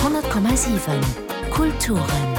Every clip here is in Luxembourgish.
10,7 Kulturen.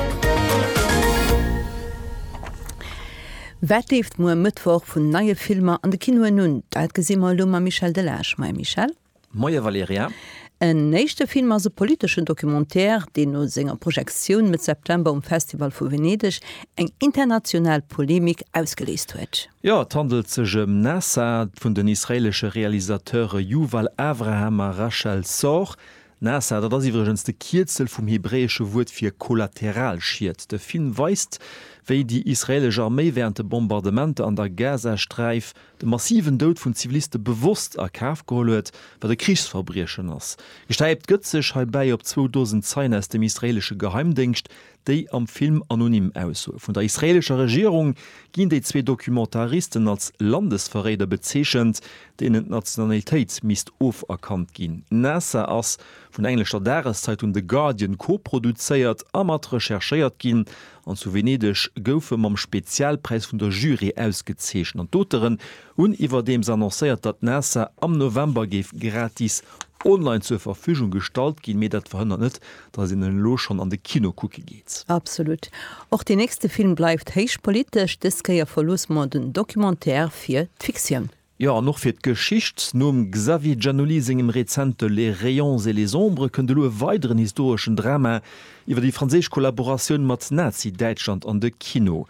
Wat leeft muer Mëttwoch vun neie Filmer an de Kinoen un? Dat gesi mer elo mam Michel Delage. Moie Michel. Moie Valerija. En éischte Film ass e politeschen Documentaire, deen no senger Projektioun Mëtt September um Festival vu Venedeg eng international Polemik ausgeléist huet. Jo, et handelt sech ëm Nasa, vun den israeelesche Realisateure Yuval Avraham a Rachel Sorr. Nasa, dat ass iwwregens de Kierzel vum hebräesche Wuert fir Kollateralschied. De Film weist, wéi déi israeelesch Arméi wärend de Bombardementer an der Gazasträif de massiven Doud vun Ziviliste bewosst a Kaf geholl huet, wat e Krichsverbriechen ass. Gestäipt gëtt sech heibäi op zwou Dosen Zeien aus dem israeelesche Geheimdéngscht, Déi am Film anonym Aussoe vun der israeelescher Regierung ginn déi zwee Documentaristen als Landesverréider bezeechent, deenen d'Nationalitéit misst oferkannt ginn. Nasser ass vun der englescher Dageszeitung The Guardian koproduzéiert a mat recherchéiert ginn an zu Venedeg gouf e mam Spezialpräis vun der Jury ausgezeechent an d'Auteren hunn iwwerdeems annoncéiert, datt Nasser am November géif gratis online zur Verfügung gestallt ginn. Mee dat verhënnert net, dass een en elo schonn an de Kino kucke geet. Absolut. Och deen nächste Film bleift héich politesch, dës Kéier verloosse mer den Documentaire fir d'Fiktioun. Jo, an och fir d'Geschicht. Nom Xavier Giannuli sengem rezente Les rayons et les ombres kënnt elo e weideren historeschen Drama iwwer déi franséisch Kollaboratioun mat Nazi-Däitschland an de Kino.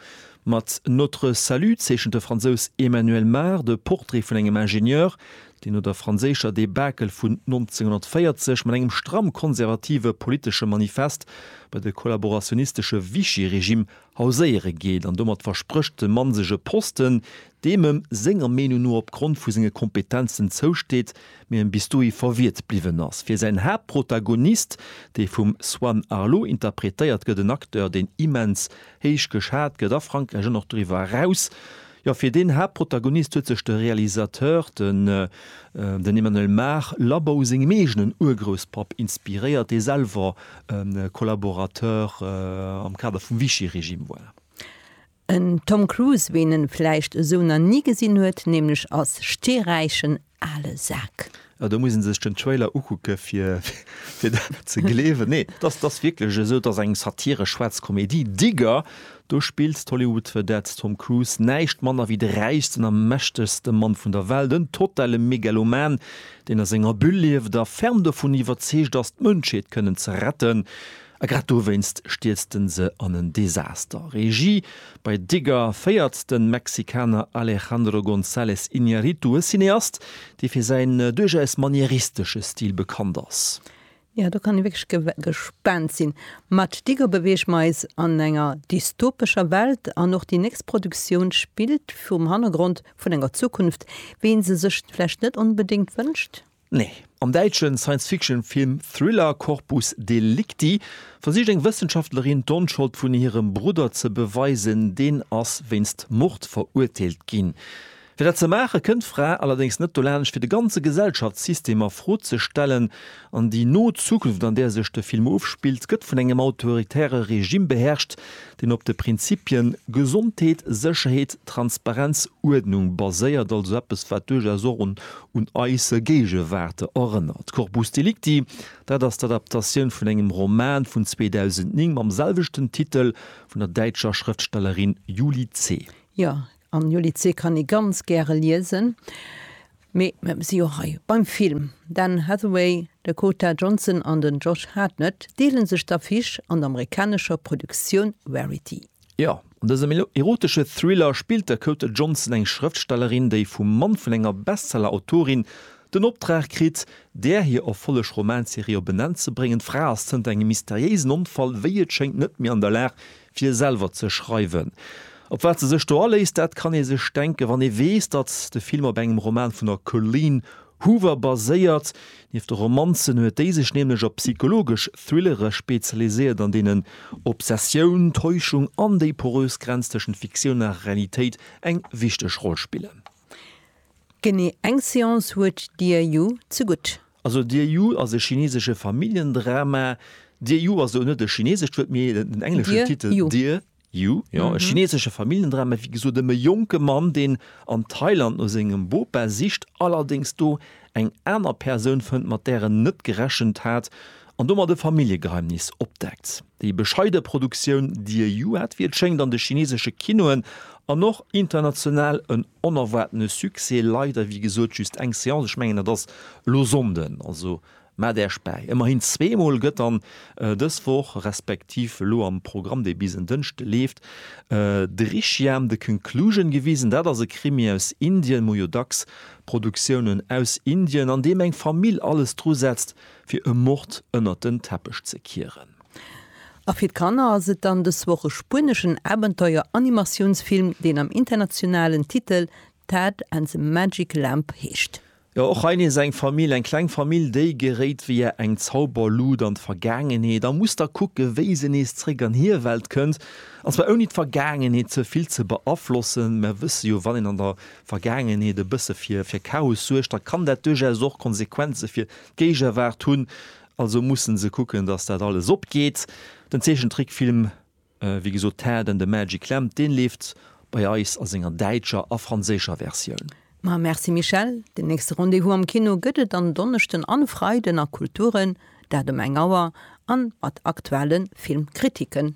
Mat Notre salut zeechent de Fransous Emmanuel Mar de Portrait vun engem Ingenieur, deen no der franséischer Debakel vun 1940 mat engem stramm konservative politesche Manifest bei de kollaborationistesche Vichy-Regime hauséiere geet an domat versprécht, dem Mann sech e Posten, deem em senger Meenung no opgrond vu senge Kompetenzen zousteet, mee em bis dohi verwiert bliwwen ass. Fir säin Haaptprotagonist, dee vum Swan Arlo interpretéiert gëtt, en Acteur, deen immens héich geschat gëtt a Frankräich an och doriwwer eraus, Jo, fir deen Haaptprotagonist huet sech de Realisateur, den den Emmanuel Mar, Labou sengem eegenen Urgrousspapp inspiréiert, dee selwer e Collaborateur am Kader vum Vichy-Regime war. En Tom Cruise, ween en vläicht esou na ni gesinn huet, nämlech als steeräichen ale Sak. Oh do muss een sech den Trailer ukucke fir fir dat ze gleewen. Nee et ass et ass wierklech esou et ass eng Satire, schwaarz Komedie. Digger do spillt d'Hollywood-Vedette Tom Cruise näischt manner wéi de räichsten a mächtegste Mann vun der Welt, en totale Megaloman deen a senger Bulle lieft a ferm dovun iwwerzeegt ass d'Mënschheet kënnen ze retten. A grad dowéinst stierzt en se an en Desaster. Regie bei Digger féiert de Mexikaner Alejandro González Iñárritu, e Cineast, dee fir säin duerchaus manieristesche Stil bekannt ass. Jo, do kann ee wierklech gespaant sinn. Mat Digger beweege mer eis an enger dystopescher Welt an och déi nächst Produktioun spillt virum Hannergrond vun enger Zukunft, wéi ee se sech vläicht net onbedéngt wënscht. Nee. Am däitsche Science-Fiction-Film Thriller Corpus Delicti versicht eng Wëssenschaftlerin d'Onschold vun hirem Brudder ze beweisen, deen ass wéinst Mord verurteelt ginn. Fir dat ze maache kënnt d'Fra allerdéngs net dolaanscht fir de ganze Gesellschaftssystem a Fro ze stellen an déi no Zukunft, an där sech de Film ofspillt, gëtt vun engem autoritäre Regime beherrscht, deen op de Prinzipien Gesondheet, Sécherheet, Transparenz, Uerdnung baséiert, also eppes, wat duerchaus och un eis Géigewaart erënnert. Corpus Delicti, dat ass d'Adaptatioun vun engem Roman vun 2009 mam selwechten Titel vun der däitscher Schrëftstellerin Julie Zeh. Jo, An jo Lycée kann ee ganz gäre liesen, mee mir si jo hei beim Film. D'Anne Hathaway, Dakota Johnson an den Josh Hartnett deele sech d'Affiche an der amerikanescher Produktioun Verity. Jo, an dësem erotesche Thriller spillt d'Dakota Johnson eng Schrëftstellerin, déi vum Mann vun enger Bestseller-Autorin den Optrag kritt, där hir Erfolleg Romanserie op en Enn ze bréngen. D'Fra ass zënter engem mysteriéisen Onfall, wéi et schéngt, net méi an der Lag, fir selwer ze schreiwen. Op wat se sech do aléisst, dat kann ee sech denken, wann ee weess, datt de Film op engem Roman vun der Colleen Hoover baséiert. Nieft de Romanzen huet déi sech nämlech op psychologesch Thrillere spezialiséiert, an deenen Obsessioun, Täuschung an déi porös Grenz tëschent Fiktioun a Realitéit eng wichteg Roll spillen. Genee eng Seance huet Dieyou ze gutt. Also Dieyou ass e chinesesche Familljendrama. Dieyou ass elo net e chinesescht Wuert, mee den engleschen Titel Dieyou, jo, e chinesesche Familljendrama, wéi gesot ëm e jonke Mann, deen an Thailand no sengem Bopa sicht, allerdéngs do eng aner Persoun fënnt, mat där en net gerechent hat An domat e Familljegeheimnis opdeckt. Déi bescheide Produktioun Dear You hat, wéi et schéngt, an de chinesesche Kinoen an och international en onerwaartene Succès. Leider, wéi gesot, just eng Seance, ech mengen dat ass elo Sonnden, also maacht Äerch bäi. Ëmmerhin zweemol gëtt dann dës Woch, respektiv elo am Programm, dee bis en Dënschde leeft, Drishyam, The Conclusion gewisen. Dat ass e Krimi aus Indien, muer jo dacks Produktiounen aus Indien, an deem eng Famill alles dru setzt, Fir e Mord ënnert den Teppech ze kieren. A fir d'Kanner ass et dann dës Woch e spueneschen Abenteuer-Animatiounsfilm, deen am internationalen Titel Tad and the Magic Lamp heescht. Jo, och hei nees eng Famill, eng kleng Famill, déi geréit via eng Zauberluut an d'Vergaangenheet a muss da kucken, wéi se nees zréck an hir Welt kënnt. An zwar ouni d'Vergaangenheet ze vill ze beaflossen. Mer wësse jo, wann een an der Vergaangenheet e bësse fir Chaos suergt, da kann dat duerchaus och Konsequenze fir d'Géigewaart hunn, also mussen se kucken, dass dat alles opgeet. Den Zeechentrickfilm, wéi gesot, Ted and the Magic Lamp, deen leeft bei eis a senger däitscher a franséischer Versioun. Ma merci Michèle, den nächste Rendez-vous am Kino gëtt et en Donneschden an Freiden a Kulturen, dat um eng Auer an mat aktuellen Filmkritiken.